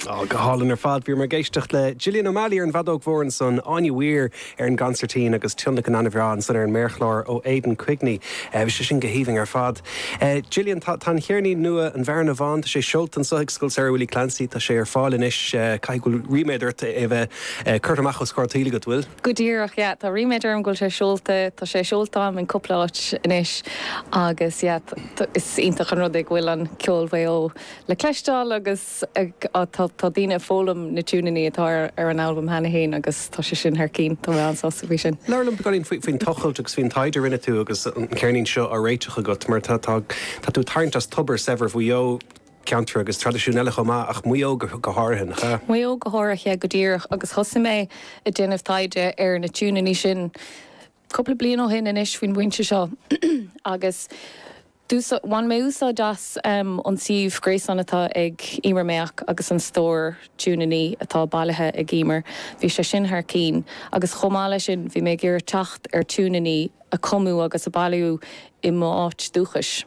Ó, go hálainn ar fad. Bhíomar ag éisteacht le Gillian O'Malley ar an bhfeadóg mhór ansan, Áine Weir ar an gconsairtín agus tionlacan an-bhreá ansan ar an méarchlár ó Aidan Quigney. Bhí sé sin go haoibhinn ar fad. Gillian, tá tá an cheirnín nua, An Bhearna Bhán, tá sé seolta anso ag Scoil Samhraidh Willie Clancy, tá sé ar fáil anois. Caithfidh go bhfuil ríméad ort é a bheith curtha amach os comhair an tsaoil agat, bhfuil? Go díreach, yeah. Tá ríméad orm go bhfuil sé seolta. Tá sé seolta agam in cúpla áit anois agus yeah, is iontach an rud é go bhfuil an ceol Mhaigh Eo le cloisteáil agus tá daoine ag foghlaim na tiúineannaí atá ar an albam cheana féin agus tá sé sin thar cinn. Tá mé an-sásta faoi sin. Labhair liom beagáinín faoin tochailt agus faoin taighde a rinne tú agus an ceirnín seo á réiteach agat mar tá tú ag tarraingt as tobar saibhir Mhaigh Eo. ceantar agus traidisiúin eile chomh maith, ach Maigh Eo go háirithe, nach ea? Maigh Eo go háirithe, go díreach, agus thosaigh mé ag déanamh taighde ar na tiúineannaí sin cúpla bliain ó shin anois faoin bpointe seo agus d'úsáid, bhain mé úsáid as an suíomh gréasáin atá ag Emer Mayock agus an stór tiúineannaí atá bailithe ag Emer, bhí sé sin thar cinn agus chomh maith leis sin bhí mé ag iarraidh teacht ar tiúineannaí a cumadh agus a bailíodh i m'áit dúchais.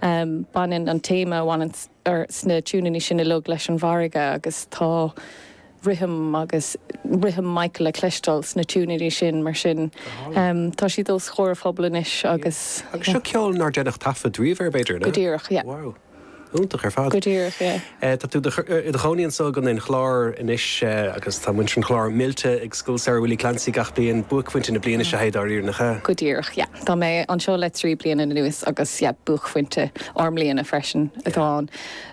Baineann an téama a bhaineann sna tiúineannaí sin uilig leis an bhfarraige agus tá rithim agus rithim Mhaigh Eo le cloisteáil sna tiúineannaí sin mar sin tá siad os comhair an phobail anois agus. Agus seo ceol nár deineadh taifead riamh air b'fhéidir, an ea? Go díreach, yeah. Wow. Iontach ar fad. Go díreach, yeah. Tá tú i do chónaí anso i gContae an Chláir anois agus tá muintir an Chláir millte ag Scoil Samhraidh Willie Clancy gach bliain. Buaicphointe na bliana seo é dáiríre, nach ea? Go díreach, yeah. Tá mé anseo le trí bliana anuas agus yeah, buaicphointe ár mbliana freisin atá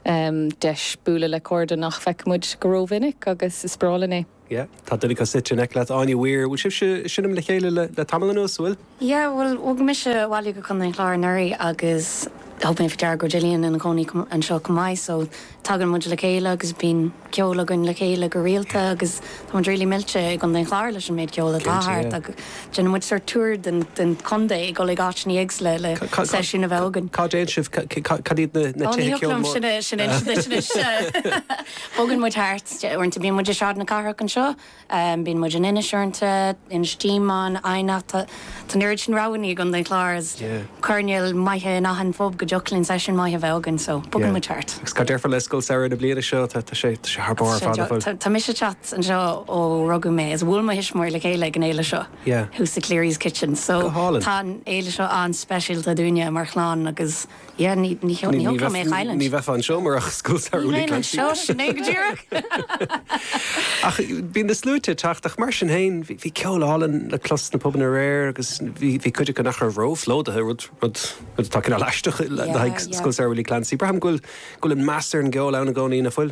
ann. Deis bualadh le cairde nach bhfeicimid go rómhinic agus is breá linn é. Yeah, tá duine acu suite in aice leat, Áine Weir. Bhfuil sibhse ag seinm le chéile le tamall anuas, an bhfuil? Yeah, bhuel, bhog mise abhaile go Contae an Chláir anuraidh agus thug mé faoi deara go bhfuil Gillian ina cónaí anseo chomh maith so tagann muid le chéile agus bíonn ceol againn le chéile go rialta agus tá muid really millte i gContae an Chláir leis an méid ceol atá thart. Cinnte, yeah. agus déanann muid sórt tour den chontae ag dul ag áiteanna éagsula le seisiún a bheith againn. Cá dtéann sibh? Cad iad na tithe ceoil sin a Ó, ní thiocfadh liom sin a insint duit anois. Bogann muid thart. Uaireanta bíonn muid i Sráid na Cathrach anseo, bíonn muid in Inis uaireanta, Inis Díomáin, Eidhneach, tá an oiread sin roghannaí i gContae an Chláir agus coirnéil maithe in achan phub go dtiocfadh linn seisiún maith a bheith againn so bogann muid thart. Agus cad déarfá le Scoil Samhraidh na bliana seo, tá sé thar barr ar fad nach bhfuil? Tá mise ag teacht anseo ó rugadh mé agus bhuail mo thuismitheoirí le chéile ag an fhéile seo, thuas i Cleary's Kitchen so tá an fhéile seo an-speisialta dúinne mar chlann agus. Yeah, ní, ní, ní thógfadh mé a chailliúint. Ní bheifeá anseo murach Scoil Samhraidh Willie Clancy. Ní bheinn anseo, sin é go díreach. Ach bíonn na sluaite ag teacht ach mar sin féin bhí ceol álainn le clos sna pubanna aréir agus bhí cuid acu nach raibh róphlódaithe, rud atá cineál aisteach le haghaidh Scoil Samhraidh Willie Clancy. Braithim go bhfuil an meas ar an gceol ann i gcónaí, nach bhfuil?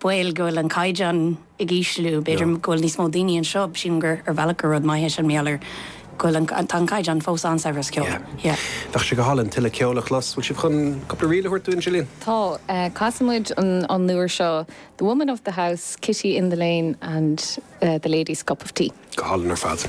baol go bhfuil an caighdeán ag ísliú, b'fhéidir go bhfuil níos mó daoine anseo, sílim gur ar bhealach gur rud maith é sin mar gheall ar go bhfuil an, tá an caighdeán fós an-saibhir as ceol, yeah. Bheadh sé go hálainn tuilleadh ceoil a chlos, bhfuil sibh chun cúpla ríl a thabhairt dúinn, Gillian? Tá. Casfaidh muid an uair seo, The Woman of the House, Kitty in the Lane and The Lady's Cup of Tea. Go hálainn ar fad.